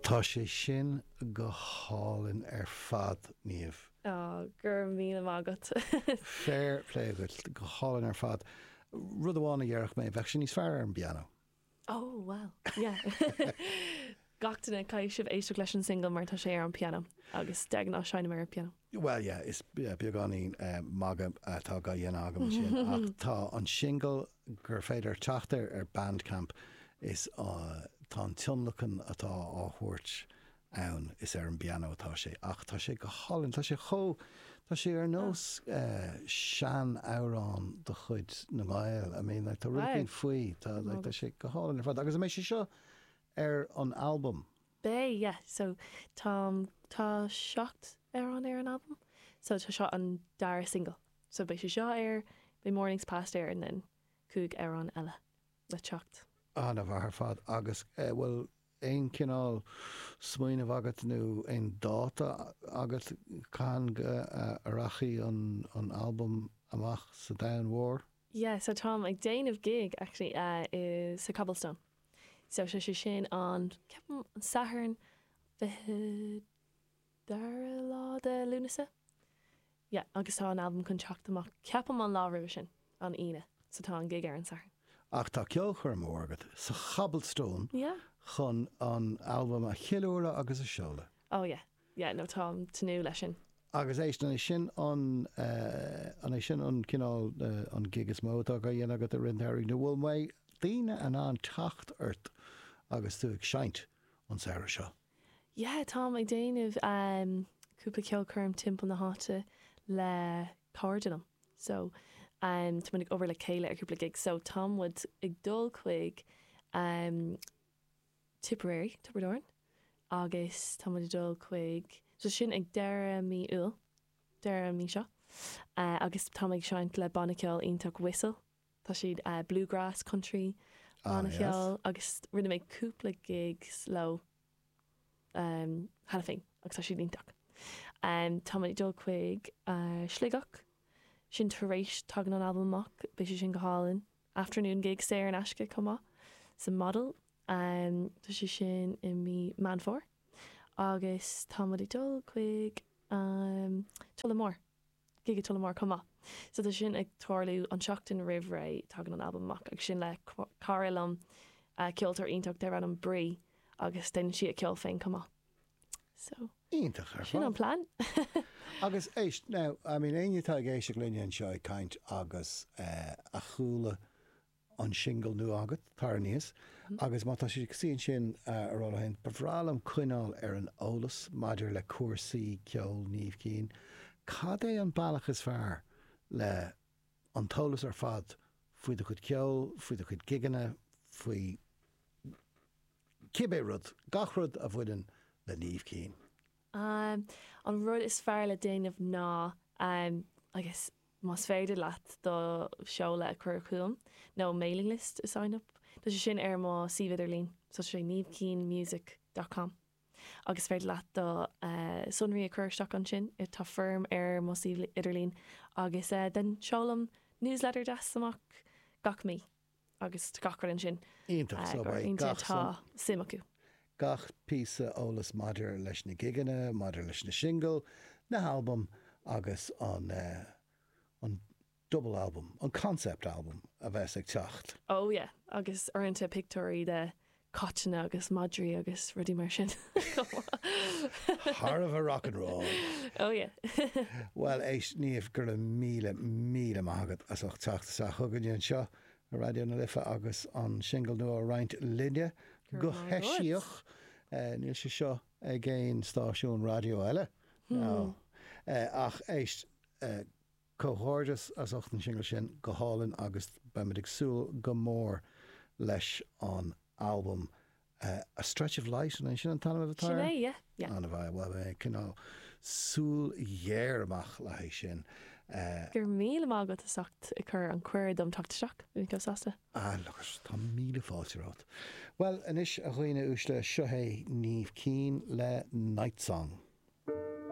Tá sé sin go hálainn ar fad, Niamh. Á, go raibh míle maith agat. Fair play dhuit. Go hálainn ar fad. Rud amháin a dhéarfadh mé, bheadh sé níos fearr ar an bpianó. Ó, bhuel, yeah. Gach duine, caithfidh sibh éisteacht leis an singil mar tá sé ar an bpianó agus de ghnáth seinnim ar an bpianó. Bhuel, yeah, is beagáinín magadh atá á dhéanamh agam ansin, ach tá an singil gur féidir teacht air ar Bandcamp is tá an tionlacan atá á thabhairt ann, is ar an bpianó atá sé, ach tá sé go hálainn, tá sé chomh, tá sé ar nós sean-amhrán de chuid na nGael, I mean, tá rud éigin faoi, tá sé go hálainn ar fad, agus, an mbeidh sé seo ar an albam, Beidh, yeah. So, tá, tá seacht amhrán ar an albam. So, tá seo an dara single. So, beidh sé seo air, beidh Mornings Past air and then cúig amhrán eile le teacht. An-mhaith ar fad. Agus eh, bhfuil aon cineál smaoineamh agat nó aon dáta agat cathain go rachaidh an albam amach sa domhan mhór? Yeah, so táim ag déanamh gig actually, eh, i, sa Cobblestone. So is é, is é sin an, ceapaim, an Satharn 22ú lá de Lúnasa. Yeah, agus tá an albam chun teacht amach, ceapaim, an lá roimhe sin, an Aoine, so tá an gig ar an Satharn. Á, tá ceolchoirm mhór agat sa Cobblestone Yeah. chun an albam a cheiliúradh agus a seoladh. Oh yeah, yeah no táim ag tnúth leis sin. Agus éist, an é sin an, an é sin an cineál, an gig is mó atá á dhéanamh agat i rith na samhraidh nó mbeidh daoine in ann teacht ort agus tú ag seinnt an samhradh seo? Yeah táim ag déanamh cúpla ceolchoirm timpeall na háite le cairde liom so tá muid ag obair le chéile ar cúpla gig so tá muid ag dul chuig Tipperary, Tiobraid Árann, agus tá muid ag dul chuig so sin ag deireadh mí Iúil, deireadh an mhí seo, agus táimid ag seinnt le banna ceoil iontach Whistle, tá siad bluegrass, country banna cheoil agus rinne mé cúpla gigs leo cheana féin agus tá siad iontach. Tá muid ag dul chuig Sligeach, sin tar éis, tagann an albam amach, beidh sé sin go hálainn. afternoon gig saor in aisce chomh maith sa Model tá sé sin i mí Meán Fómhair agus tá muid ag dul chuig Tullamore gig i Tullamore chomh maith so tá sé sin ag tarlú an tseachtain roimh a tagann an albam amach agus sin le cara liom ceoltóir iontach darb ainm Brí agus déanann sí a ceol féin chomh maith So. Iontach ar fad. Sin an plean. Agus éist, now, I mean, éinne atá ag éisteacht linne anseo ag caint agus a chuala an singil nua agat, Tar Aníos, agus má tá siad ag suí ansin ag rá leo féin, ba bhreá liom coinneáil ar an eolas maidir le cúrsaí ceoil Niamh Keane. Cad é an bealach is fearr le an t-eolas ar fad faoi do chuid ceoil, faoi do chuid gigeanna, faoi cibé rud, gach rud a bhaineann le Niamh Keane. An rud is fearr le déanamh ná agus más féidir leat do sheoladh a chur chugam nó mailing list a sign up, tá sé sin ar mo suíomh idirlín so is é niamhkeanemusic dot com agus is féidir leat do shonraí a chur isteach ansin, tá foirm ar mo suíomh idirlín agus den seolaim newsletter deas amach gach mí. agus gach rud ansin. Iontach, so beidh gach tá suim acu. gach píosa eolas maidir leis na gigeanna, leis na singil, na halbaim agus an an double album, an concept album a bheidh ag teacht. Oh yeah, agus uaireanta pictiúirí de caiteanna agus madraí agus rudaí mar sin chomh maith. Thar a bheith rock and roll! Oh yeah! Bhuel, éist, Niamh, go raibh míle, míle maith agat as ucht teacht isteach chugainne anseo i Raidió na Life agus an singil nua a roinnt linne go heisiach. Níl sé seo ag aon stáisiún raidió eile, ná. Ach éist, Comhghairdeas as ucht an singil sin, go hálainn agus beimid ag súil go mór leis an albam. A Stretch of Light, an é sin an t-ainm atá Sin air? é, yeah, yeah. An a bheidh, bhuel, beidh mé ag coinneáil súil ghéar amach le haghaidh sin. Go raibh míle maith agat as ucht an cuireadh dom teacht isteach, bhí mé chomh sásta. Ah, look it, tá míle fáilte romhat. Bhuel, anois, a dhaoine uaisle, seo hé Niamh Keane le Nightsong.